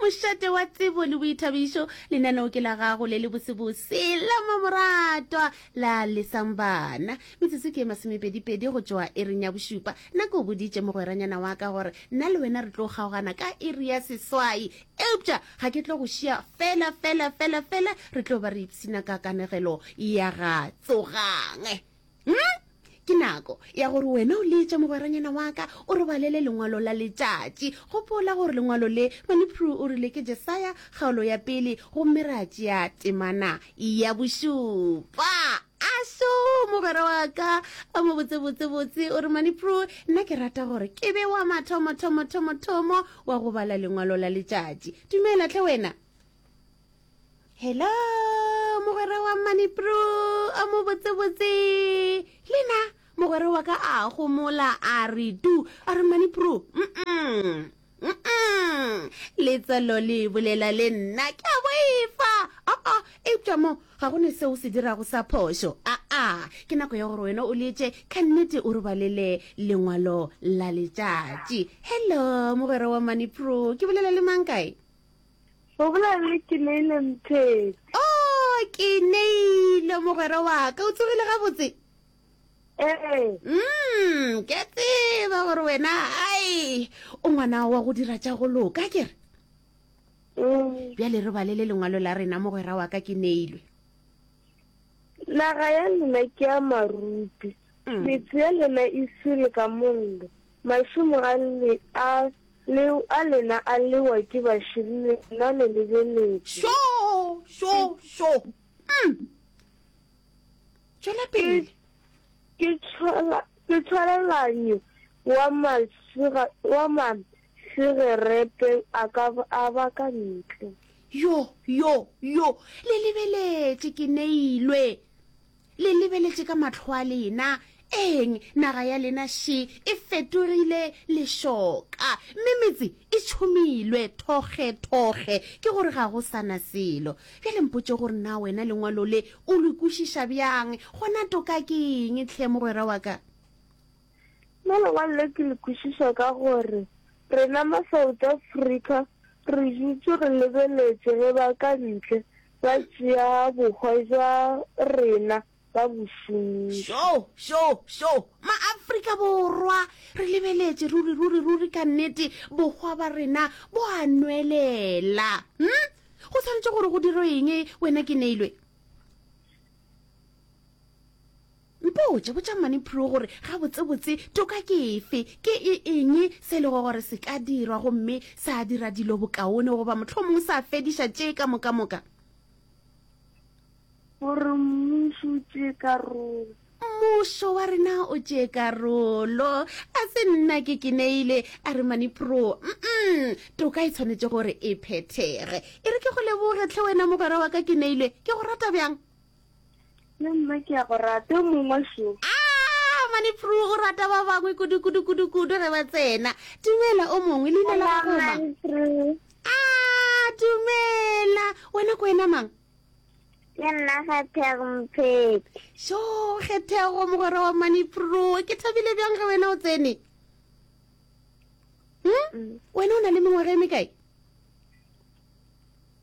Mošate wa tsebo le boithabišo, lenaneo ke la gago le le bosebose la mamoratwa la lesang bana. Metsotso ke e masomepedipedi go tšoa iring ya bošupa. Nna ke o boditše mogweranyana wa ka gore nna le wena re tlo kgaogana ka iri ya seswai, eupša ga ke tlo go šia fela fela fela fela re tlo ba re ipshina ka kanegelo ya ga Tsogang. Hm, ke nako ya gore wena o leetša mogweranyana wa ka o re balele lengwalo la letšatši. Gopola gore lengwalo le Maliprue o rile ke Jesaya kgaolo ya pele gomme ra tšea temana ya bošupa. Aso, mogwera wa ka a mo botse botsebotse, o re, Maliprue, nna ke rata gore ke be wa mathomothomothomo wa go bala lengwalo la letšatši. Dumela hle wena. Hello, mogwera wa Manipro, a mo botse botse. Lena, mogwera wa ka a gomola a re tu, a re Manipro, mm-mm, mm-mm. Letswalo le bolela le nna, ke a boifa. A-a, eupša mo, ga go ne se o se dirago sa phošo. A-a, ke nako ya gore wena o letše, ka nnete o robalele lengwalo la letšatši. Hello, mogwera wa Manipro, ke bolela le mang kae? O bolela le Keneile Mthetse. Oh, Keneile mogwera wa ka, o tsogile gabotse? Ee. Mm, ke a tseba gore wena ai o ngwana wa go dira tša go loka ke re. Mm. Bjale re balele lengwalo la rena mogwera wa ka Keneilwe. Naga ya lena ke ya marupi, mm. metse ya lena e sele ka mollo, mašomo a le a le a lena a lewa ke baširi lena le lebeletse. Sho sho sho. Mm. Tšwela pele. Ke tshwala ke tshwalelanyo wa masira wa ma Segerepe a ka a ba ka ntle. Yo, yo, yo! Le lebeletše ke neilwe. Le lebeletše ka mahlo a lena. Eng, naga ya lena še e fetogile lešoka, mme metse e tšhomilwe thokgethokge ke gore ga go sa na selo. Bjale mpotše gore na wena Lengwalo le o le kwešiša bjang, gona toka ke eng tlhe, mogwera wa ka? Mo lengwalo le ke le kwešiša ka gore rena ma South Africa re dutše re lebeletše ge ba ka ntle ba tšea bohwa bja rena ba bo šomiša. Šo! Šo! Šo! Ma Afrika Borwa re lebeletše ruri, ruri, ruri ka nnete bohwa ba rena bo a nwelela. Hm? Go swanetše gore go dirwe eng wena Keneilwe? Mpotše, botša Mmane Prue gore gabotsebotse toka ke efe, ke e eng se e lego gore se ka dirwa gomme sa dira dilo bokaone goba mohlomongwe sa fediša tše ka mokamoka. Gore mmušo o tšee karolo. Mmušo wa rena o tšee karolo. A se nna ke kineile, a re Mmane Prue. Mm-mm, toka e tshwanetše gore e phethege. E re ke go leboge tlhe wena mogwera wa ka Kineile, ke go rata bjang? Yo mma ke a go rata yo mongwe sho. Ah, mane pru o rata ba bangwe kudu kudu kudu kudu ge ba tsena. Dumela o mongwe leina la gago ma. Ah, dumela. Wena ko wena mang? Ke nna Gethego Mphete. Sho, Gethego mogwera wa mane pru. Ke thabile bjang ge wena o tsene? Hmm? Mm. Wena o na le mengwaga e mekae?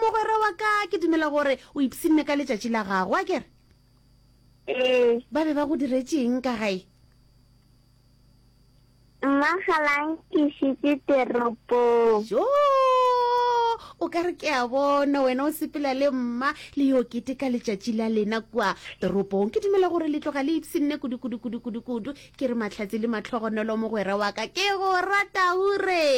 mogwera wa ka ke dumela gore o ipsinne ka letšatši la gago a kere ee ba be ba go diretseng ka gae mmagalang ke šitse teropong jo o ka re ke a bona wena o sepela le mma le yo kete ka letšatši la lena kua toropong ke dumela gore le tloga le ipsinne kudu kudu kudu kudu kudu Ke re Mahlatse le Mahlogonolo mogwera wa ka ke go rata hure.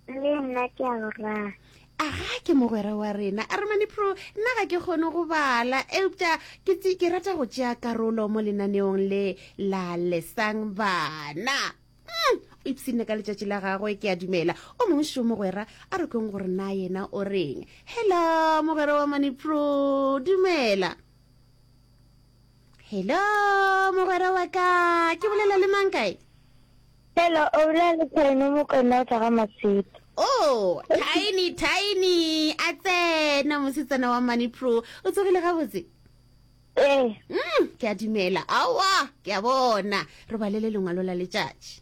Le nna ke a go rata. Aga ke mogwera wa rena. A re mane pro nna ga ke kgone go bala eupša ke tse ke rata go tšea karolo mo lenaneong le la lesang bana. Mm, o ipshinne ka letšatši la gagwe ke a dumela. O mongwe šo mogwera a re kweng gore na yena o reng. Hello mogwera wa mane pro dumela. Hello, mogwera wa ka. Ke bolela le mang kae? Hello, o bolela le Tiny Mokona o tla ga Masito. Oh, Tiny, Tiny. A tsena mosetsana wa Money Pro. O tsogile gabotse? Ee. Eh. Mm, ke a dumela. Awa, ke a bona. Re balele lengwalo la letšatši.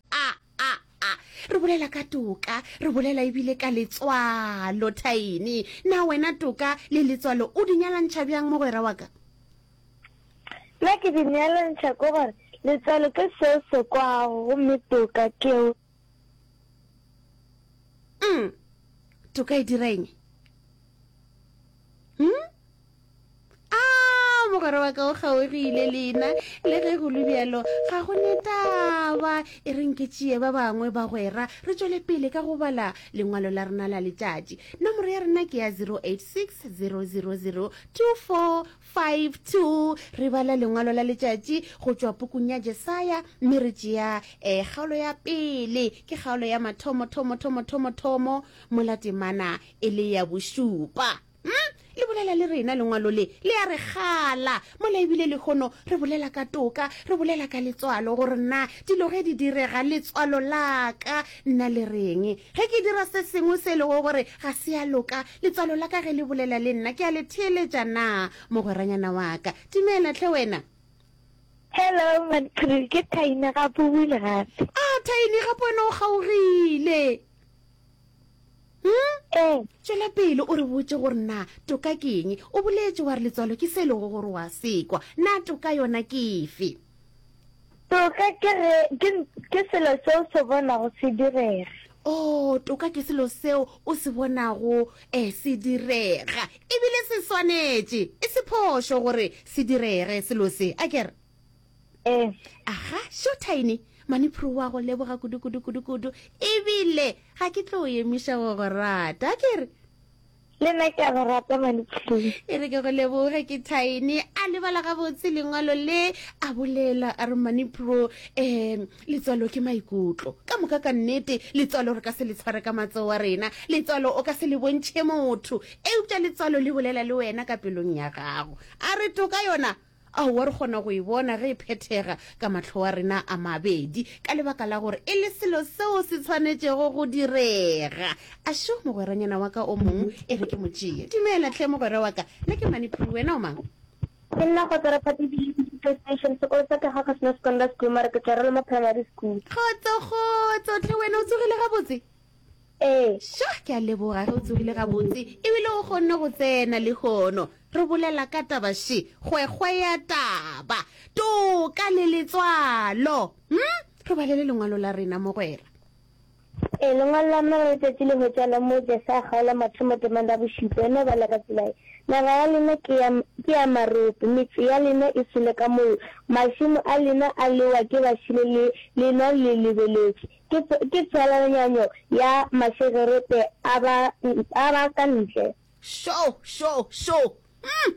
a a a re bolela ka toka re bolela ebile ka letswalo thaini na wena toka le letswalo o di nyalantšha bjang mogwera wa ka nna ke di nyalantšha ko gore letswalo ke se se kwago gomme toka keo mm toka e dira eng hmm? Aa, mogwera wa ka o kgaogile lena, le ge go lubjalo ga go ne taba. E re nke tšee ba bangwe bagwera, re tšwele pele ka go bala lengwalo la rena la letšatši. Nomoro ya rena ke ya 086 000 2452. Re bala lengwalo la letšatši go tšwa pukung ya Jesaya, mme re tšea um kgaolo ya pele. Ke kgaolo ya mathomo, thomo, thomo, thomo, thomo, mola temana e le ya bošupa. Hm, le bolela le rena, lengwalo le, le a re gala. Mola ebile lehono re bolela ka toka, re bolela ka letswalo, gore na dilo ge di direga, letswalo la ka nna le reng. Ge ke dira se sengwe se e lego gore ga se a loka, letswalo la ka ge le bolela le nna, ke a le theeletša na, mogweranyana wa ka? Dumela hle wena. Hello, Matkru, ke Thaini gape o buile gape. Ah, Thaini, gape wena o kgaogile. Hmm? Ee. Tšwela pele o re botše gore na toka ke eng. O boletše wa re letswalo ke se e lego gore wa sekwa. Na toka yona ke efe? Toka ke ge ke ke selo se o se bonago se direga. Oh, toka ke selo seo o se bonago eh se direga. Ebile se swanetše, e se phošo gore se direge selo se. A kere? Eh. Aha, seo Tiny, maniphuru wa go leboga kudu kudu kudu kudu. Ebile ga ke tlo yemiša go go rata, ke re. Le nna ke a go rata maniphuru. E re ke go leboge ke Tiny, a lebala ga botse lengwalo le a bolela a re maniphuru eh letswalo ke maikutlo. Ka moka ka nnete letswalo re ka se le tshware ka matsoa rena. Letswalo o ka se le bontšhe motho. Eupša letswalo le bolela le wena ka pelong ya gago. A re toka yona Aowa, re kgona go e bona ge e phethega ka mahlo a rena a mabedi, ka lebaka la gore e le selo seo se tshwanetšego go direga. A šo, mogweranyana wa ka o mongwe e re ke mo tšee. Dumela hle, mogwera wa ka. Nna ke Maniphulu, wena o mang? Ke nna Kgotsara Phathi Bili, ke dula Station. Sekolo sa ka ga ga se na Secondary School, mara ke tswa Roloma Primary School. Kgotso, kgotso hle. Wena o tsogile gabotse? Ee. Shah, ke a leboga ge o tsogile gabotse e bile o kgonne go tsena lehono. Re bolela ka taba she, kgwekgwe ya taba, toka le letswalo. Hm? Re balele lengwalo la rena, mogwera. Ee, lengwalo la mma re letšatši le hwetša la moo Jese a kgaola mathomo temong la bošupa. E no bala ka tsela ye, Naga ya lena ke ya, ke ya marope, metse ya lena e sule ka mollo, mašemo a lena a lewa ke bašele le lena le lebeletše. Ke, ke tswalanyanyo ya mašegerete a ba, a ba ka ntle. Šo! Šo! Šo! Umm!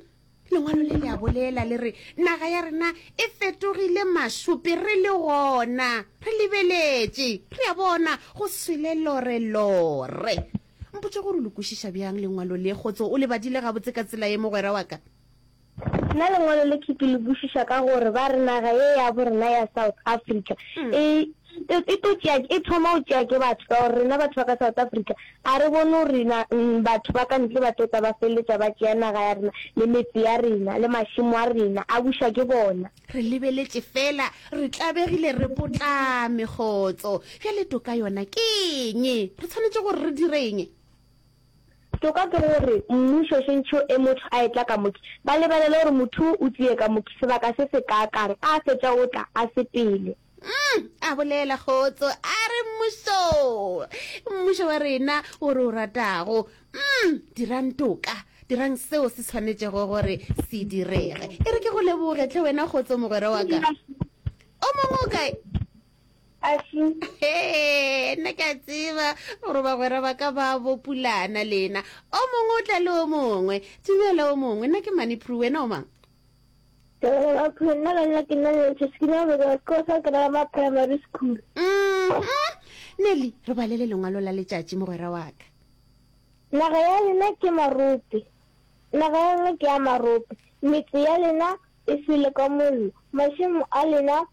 Lengwalo le le a bolela, le re, Naga ya rena e fetogile mašope, re le gona re lebeletše, re a bona go swele lore, lore. Mpotše gore o le kwešiša bjang Lengwalo le, kgotso. O le badile gabotse ka tsela ye, mogwera wa ka? Na lengwalo le ke ke le bušiša ka gore ba re naga ye ya bo rena ya South Africa e e to tšea e thoma go tšea ke batho ka gore rena batho ba ka South Africa a re bone gore rena batho ba ka ntle ba tota ba feleletša ba tšea naga ya rena le metse ya rena le mašimo a rena a buša ke bona re lebeletše fela re tlabegile re potlame kgotso bjale toka yona ke eng re tshwanetše gore re direng Toka ke gore mmušo šentšho e motho a etla ka moki, ba lebelele gore motho wo o tlie ka moki sebaka se se kaakang, a fetša o tla, a sepele. Umm, a bolela Kgotso a re, Mmušo, mmušo wa rena wo re o ratago, umm, dirang toka, dirang seo se swanetšego gore se direge. E re ke go leboge hle wena Kgotso mogwera wa ka. O mongwe o kae? nna ke a tseba gore bagwera ba ka ba bopulana lena o mongwe o tla le o mongwe tumela o mongwe nna ke mane pru wena o mang nna ka nna ke nna lentšhe se ke na beka ko sa ke rama primary school mm-hmm. nelly re balele lengwalo la letšatši mogwera wa ka naga ya lena ke marope naga ya lena ke ya marope metse ya lena e sele ka mollo mašemo a lena